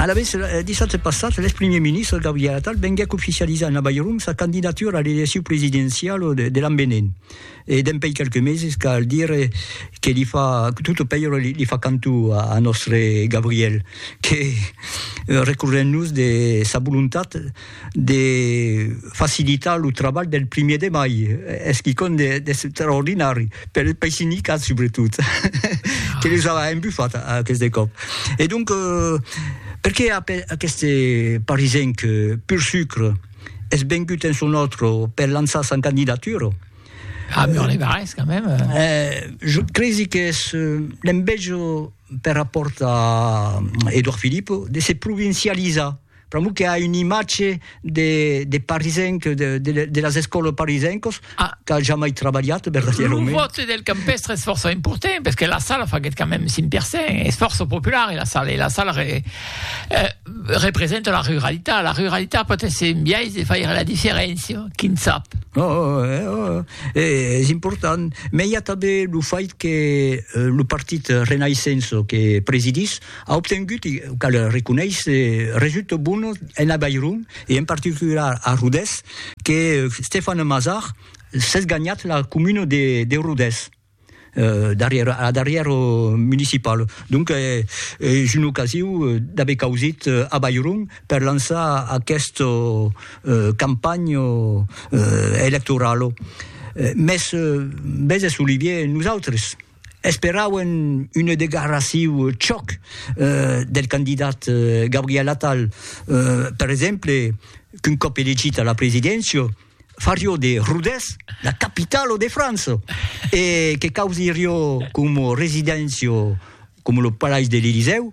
Alavetz, dissabte passat, l'ex-primièr ministre Gabriel Attal venguèc oficializar en Avairon sa candidatura a l'eleccion presidenciala de l'an venent, e dempèi qualques meses cal dire que li fa, tot o pèira li fa cantó a nòstre Gabriel, que recorrent-nos de sa volontat, de facilitar lo trabalh del primièr de mai, es quicòm d'extraordinari, per, pei sindicat subretot, que les a embufat aqueste còp. E donc, perqué aqueste parisenc pur sucre es vengut en son òtro per lançar sa candidatura? A Mur-les-Barrés, quand même! Je cresi qu'es l'enveja per rapòrt a Edouard Philippe de se provincializar, Pr'amor que a un imatge de, de parisenc, de, de, de las escòlas parisencos, ah. qu'a jamai trabalhat, verdaderament. Lo vote del campestre es força important, parce que la sala faguet quand même 5%, es força popular, la sala, la sala re, eh, representa la ruralitat, la ruralitat pot ser un biais de faire la diferència, qui ne sap. Oh, oh, eh, oh, eh, es important, mais il y a també lo fait que eh, lo partit Renaissance que presidis, A obtengut, cal reconéisser, resultats bones en Avairon e en particular a Rodés, que Stéphane Mazard s'es ganhat la comuna de Rodés a darrièr municipal. Donc es una ocasiu d'aver causit Avairon per lançar aquesta campanha electorala. Mès, veses Olivier, nosautres, Esperauen una declaraciu chòc del candidat Gabriel Attal, per exemple, qu'un còp elegit a la presidéncia, farió de Rodés la capitala de França e que causirió coma residéncia coma lo Palais de l'Elysèu,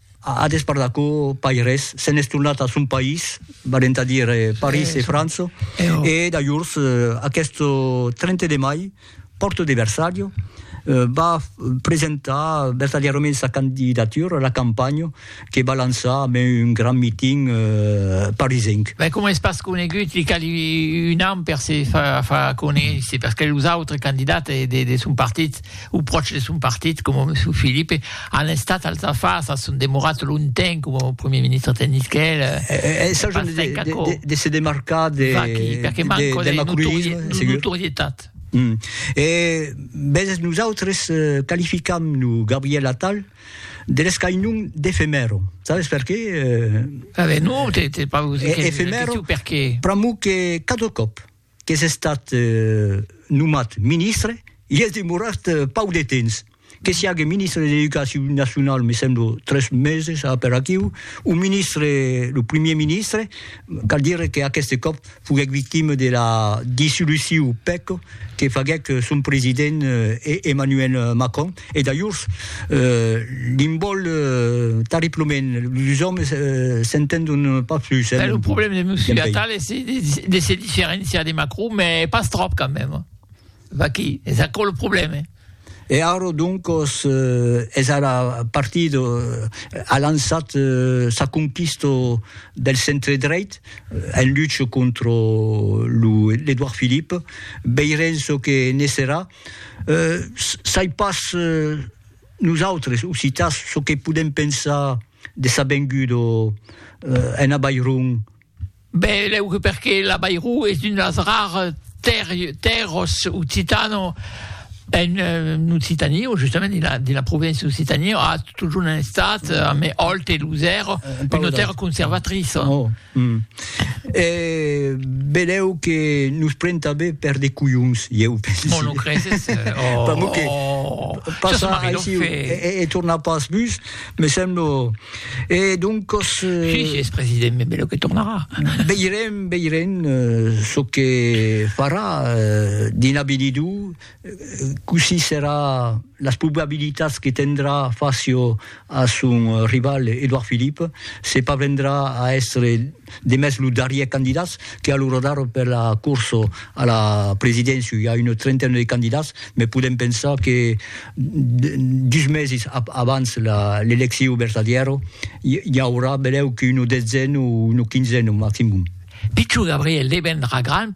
A despart d'aquò, pas res, se'n es tornat a son país, valent a dire París e França, e dajors, aqueth 30 de mai, Porto de Versalho, va presentar vertadièrament sa candidatura, la campanha que va lançar amb un grand miting parisenc. Mès coma es pas conegut, li cali un an per se far conéisser, perque los autres candidats de son partit, o pròches de son partit, coma Monsieur Philippe, an estat als afars, a son demorat longtemps coma Premier Ministre tè Nisquèl. Es son pas de, de, de, de se demarcar de, Vaqui, de, de, de, de macronisme, de notorietat. Mm. E vezes nosaltres eh, qualificam no Gabriel Atal de l'escainon d'efemèro. Sabes per qué? Eh, ah ben non, t'es pas... E, efemèro, per qué? Pramo que cada còp qu'es estat nomat ministre, i es demorat pauc de temps, que siague ministre de l'Educacion Nacionau, me semblo, tres meses a per aquiu, o ministre, lo primier ministre, cal dire qu'aqueste còp foguèc victime de la dissolucion, pèc, que faguèc son president Emmanuel Macron, E dajors, li'n vòl tarriplement, los òmes s'entendon pas plus. Ben, lo problèm de Monsieur Attal es de se diferenciar de Macron, mès pas tròp quand mèm. Vaquí, es aquò lo problèm. E ara, doncas, es ara partit, a lançat sa conquista del centre-dreit, en lucha contra lo Edouard Philippe. Veirem çò que ne serà. Sai pas nosautres occitans çò que podèm pensar de sa venguda en Avairon. Ben, lèu que perque l'Avairon es un las rares tèrras occitanas en Occitània, o justament dins la provincia d'Occitània, a totjorn estat, amé Òlt e Losèr, una tèrra conservatriça. Hum. E belèu que nos pren tanben per de colhons, ieu pensi. Bon, lo creses? Oh! Pr'amor que passa aici e torna pas bus, me semblo. E doncos... Si, si es president, me belèu que tornarà. Veirem, veirem çò que farà dins l'avinidor. Cossí serà las probabilitats que tendrà facio a son rival Edouard Philippe se parvendrà a èstre demest lo darrier candidats que a lo radar per la corso a la presidéncia i a una trentaina de candidats me podèm pensar que dus mesis abans l'elecciu vertadièro i aurà benlèu que una detzena o una quinzena maximum. Pichon Gabriel devendrà grand